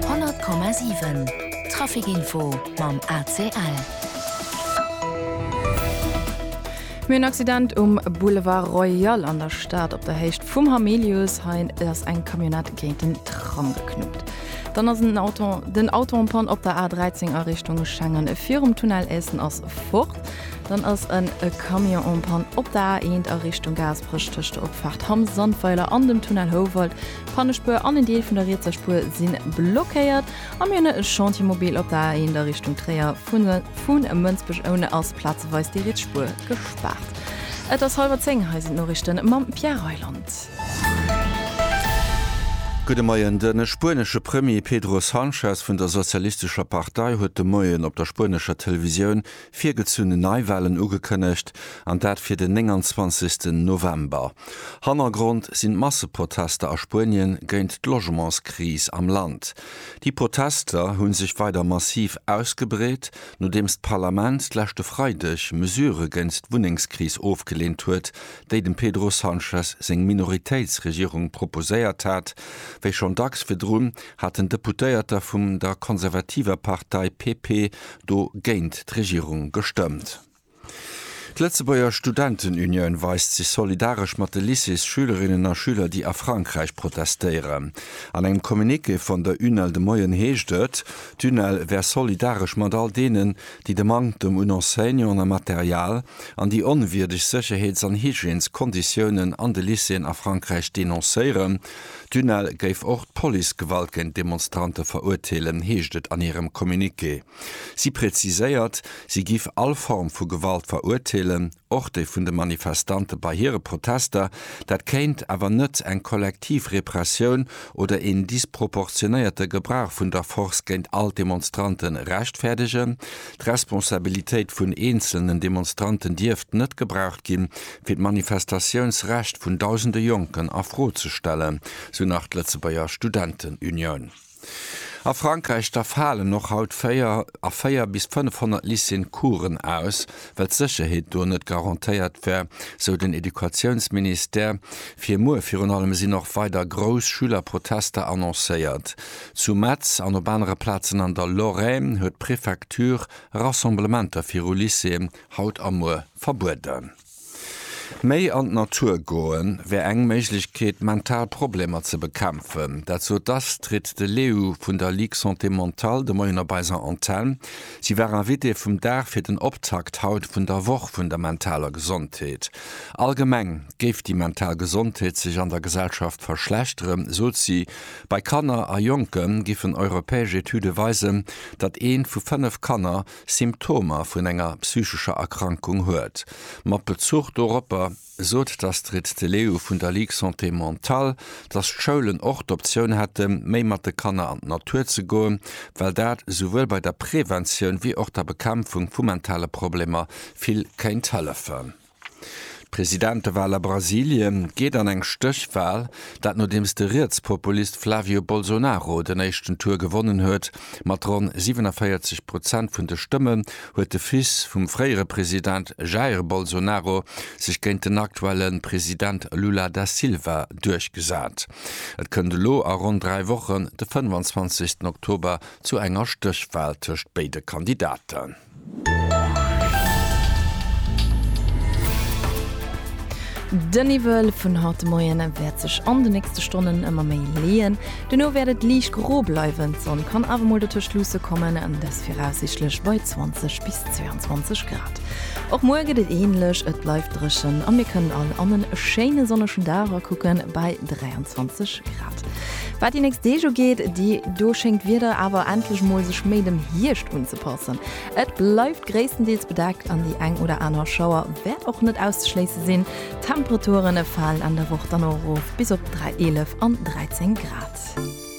100,7 Trafic Info mam ACL. Mir hunn en Accident um Boulevard Royal an der Stad op der Héicht vum Hamilius. Hei ass eng Camionnette géint en Tram geknuppt. Dann ass en Auto, den Auto en Panne op der A13 a Richtung Schengen. Virum Tunnel Essen ass fort. Dann ass en Camion en Panne op der A1 a Richtung Gaasperech tëscht der Opfaart Hamm-Sandweiler an dem Tunnel Houwald. D'Pannespuer an en Deel vun der rietser Spuer si blockéiert a mir hunn e Chantiermobil op der A1 a Richtung Tréier. Vu Mënsbech oune ass plazeweis déi riets Spuer gespaart. Et ass hallwer zéng, hei sinn d'Noriichte mam Pierre Reyland. Gudde Moien. De spuenesche Premier Pedro Sanchez vun der sozialistescher Partei huet de Moien op der spuenescher Televisioun Virgezunn Neiwahlen ugekënnegt, an dat fir den 29 November. Hannergrond sinn d'Masseprotester a Spuenien géint d'Logementskris am Land. Déi Protester hu sech weider massiv ausgebreet, nodeems d'Parlament d'leschte Freideg Mesurë géint d'Wunnengskris ofgeleent huet, déi dem Pedro Sanchez seng Minoritéitsregierung proposéiert hat. Wéi schonn dacks virdrun haten Deputéierter vum der konservativer Partei PP do géint d'Regierung gestëmmt. D'Lëtzebuerger Studentenunioun weist sech solidaresch mat de Lycées-Schülerinnen a Schüler, déi a Frankräich protestéieren. An engem Communiqué vun der UNEL de Moien heescht et, d'UNEL wär solidaresch mat all deenen, déi de Manktem un Enseignanten a Material an déi onwierdeg Sécherheets an Hygiènes-Konditiounen an de Lycéeën a Frankräich denoncéieren D'UNEL géif och d'Policegewalt géint d'Demonstrante verurteelen, heescht et an hirem Communiqué. Si präziséiert, si giff all Form vu Gewalt verurteelen, och déi vun de Manifestante bei hire Protester. Dat kéint awer net eng kollektiv Repressioun oder een disproportionéierte Gebrauch vun der Force géint all d'Demonstrante rechtfäerdegen, D'Responsabilitéit vun eenzelnen Demonstranten dierft net gebraucht ginn, fir d'Manifestatiounsrecht vun dausende Jonken a Fro ze stellen, sou nach d'Lëtzebuerger Studentenunioun. A Frankräich da falen och haut véier a véier bis 500 Lycéeën Coursen aus, well d'Sécherheet do net garantéiert wär, sou den Educatiounsministère. Fir muer virun allem sinn och weider grouss Schülerprotester annoncéiert. Zu Metz an op anere Plazen an der Lorraine huet d'Prefecture Rassemblementer viru Lycéeën haut a muer verbueden. Méi an d'Natur goe wär eng Méiglechkeet, mental Problemer ze bekämpfen. Dat sot d'Astrid de Leeuw vun der Ligue Santé Mentale de Moien op eiser Antenn. Si war Invitée vum Dag fir den Optakt haut vun der Woch vun der mentaler Gesondheet. Allgemeng géif déi mental Gesondheet sech an der Gesellschaft verschlechteren, sot si. Bei Kanner a Jonke giffen europäesch Etüde weisen, datt eent vu fënnef Kanner Symptomer vun enger psychescher Erkrankung huet. Mat Bezuch doropper sot d'Astrid de Leeuw vun der Ligue Santé Mentale, datt d'Schoulen och d'Optioun hätte méi mat de Kanner an d'Natur ze goen, well dat souwuel bei der Preventioun wéi och der Bekämpfung vu mentale Problemer vill kéint hëllefen. D'Presidentewal a Brasilie geet an eng Stéchwal, dat nodeems de Rietspopulist Flavio Bolsonaro den éischten Tour gewonnen huet. Mat ronn 47 Prozent vun de Stëmme huet de Fils vum fréiere President Jair Bolsonaro sech géint den aktuelle President Lula da Silva duerchgesat. Et kënnt elo a ronn dräi Wochen, de 25 Oktober, zu enger Stéchwal tëscht béide Kandidaten. De Niwwel vun haut de Moien wäert sech an de nächste Stonnen ëmmer méi leeën. Duerno wäert et liicht gro bleiwen, d'Sonn kann awer mol dotëscht luusse kommen, dass viraussiichtlech bei 20 bis 22 Grad. Och muer gëtt et änlech, et bleift dréchen a mir kënnen all an e schéine sonnegen Dag erekucken bei 23 Grad. Wat déi nächst Deeg ugeet, déi do schéngt d'Wieder awer endlech mol sech méi dem Hierscht unzepassen. Et bleift gréisstendeels bedeckt an déi eng oder aner Schauer wäert och net auszeschléisse sinn. D'Temperature falen an der Woch dann och erof bis op 3, 11 an 13 Grad.